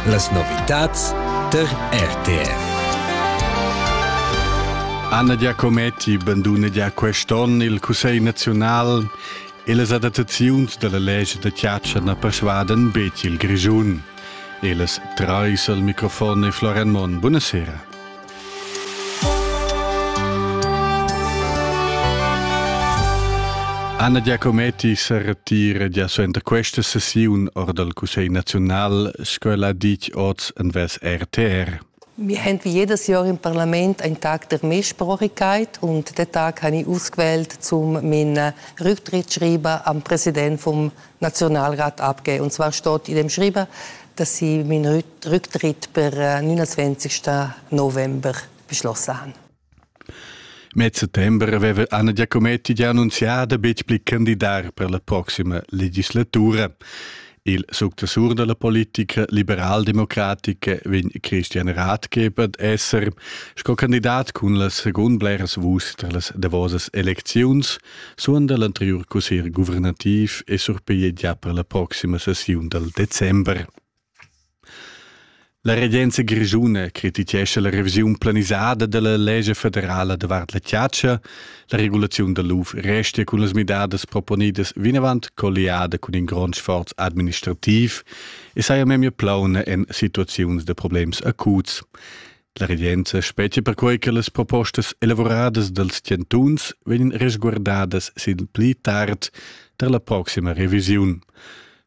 Las novitads tar RTR. Anna Giacometti bandunegia quest'onn il Cussegl naziunal e las adattaziuns dalla legge da chiaccia na persuadan betg il Grischun. E las treis al microfon e Florian Monn. Buonasera. Anna Giacometti se retira gia suenter questa sessiun or dal Cussegl nazional, sco la dic oz en ves RTR. Wir haben wie jedes Jahr im Parlament einen Tag der Mehrsprachigkeit und den Tag habe ich ausgewählt, um meinen Rücktritt zu schreiben am Präsident vom Nationalrat abgegeben. Und zwar steht in dem geschrieben, dass sie meinen Rücktritt per 29. Äh, November beschlossen haben. Met settembre aveva Anna Giacometti già annunziato betg pli candidar per la prossima legislatura. Il successur della politica liberaldemocratica vegn Christian Ratgeber esser sco candidat cun la secund bleras vuschs per las davosas elecziuns. suonda l'anteriur cussegl guvernativ e surpiglia già per la proxima sessiun dal december. La regenza grischuna crititgescha la revisiun planisada della legge federala davart la chiaccia. La regulazione da l'UF restia cun las midadas proponidas vinavant colliada cun in grond sforz administrativ e saja memia plauna en situaziuns de problems acuts. La regenza spetga perquai che las propostas elavuradas dals chantuns vegnan resguardadas sin pli tard tar la proxima revisiun.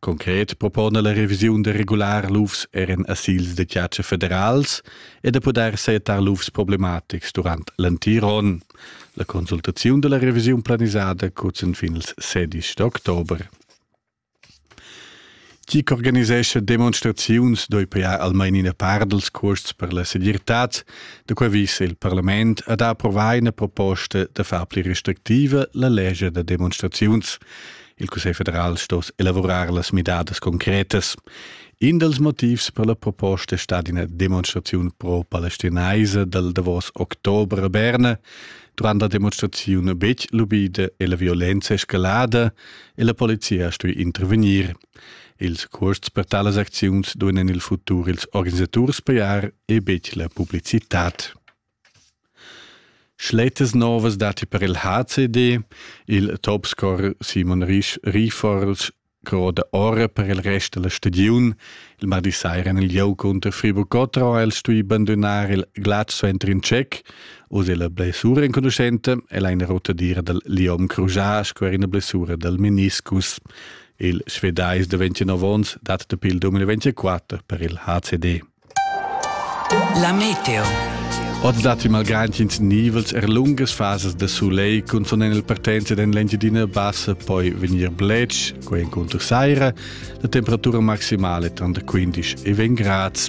Concret propona la revisiun da regular lufs er en asils da chatscha federals e da poder setar lufs problematics durant l'antiron. La consultaziun da la revisiun planisada cuzzan fin ils 16 d'october. Chi ch'organisescha demonstraziuns doi pajar almain ina part dals cuosts per la segirtad, da quai vis il parlament ad ha approvà ina proposta da far pli restrictiva la legia da demonstraziuns. Il Cussegl federal sto elavurar las midadas concretas. In dals motivs per la proposta è stata ina demonstraziun pro-palestinaisa dal davos october a Berna. Durant la demonstraziun betg lubida e la violenza escalada e la polizia stui intervegnir. Ils cuosts per talas acziuns duenan il futur ils organisaturs pajar e betg la publicitad. Schletas novas dati per il HCD, il topscorer Simon Risch Rifors croda ora per il rest della stagiun. Il mardi saira il gioco unter Friburg Cottro ha el stui bandonar il Glatzo entr in Tschech, Oz è la blessura enconuschenta e la ina rotadira dal Liom Crujá sco er ina blessura dal meniscus. Il Svedais da 29 onns dat da pil 2024 per il HCD. La meteo. Oz datti malgrad ins nivels er lungas fasas da soleil cunzont en il partenza en l'Engiadina Bassa poi vegnir bletsch, quai encunter saira, la temperatura maximale tranter 15 e 20 grads.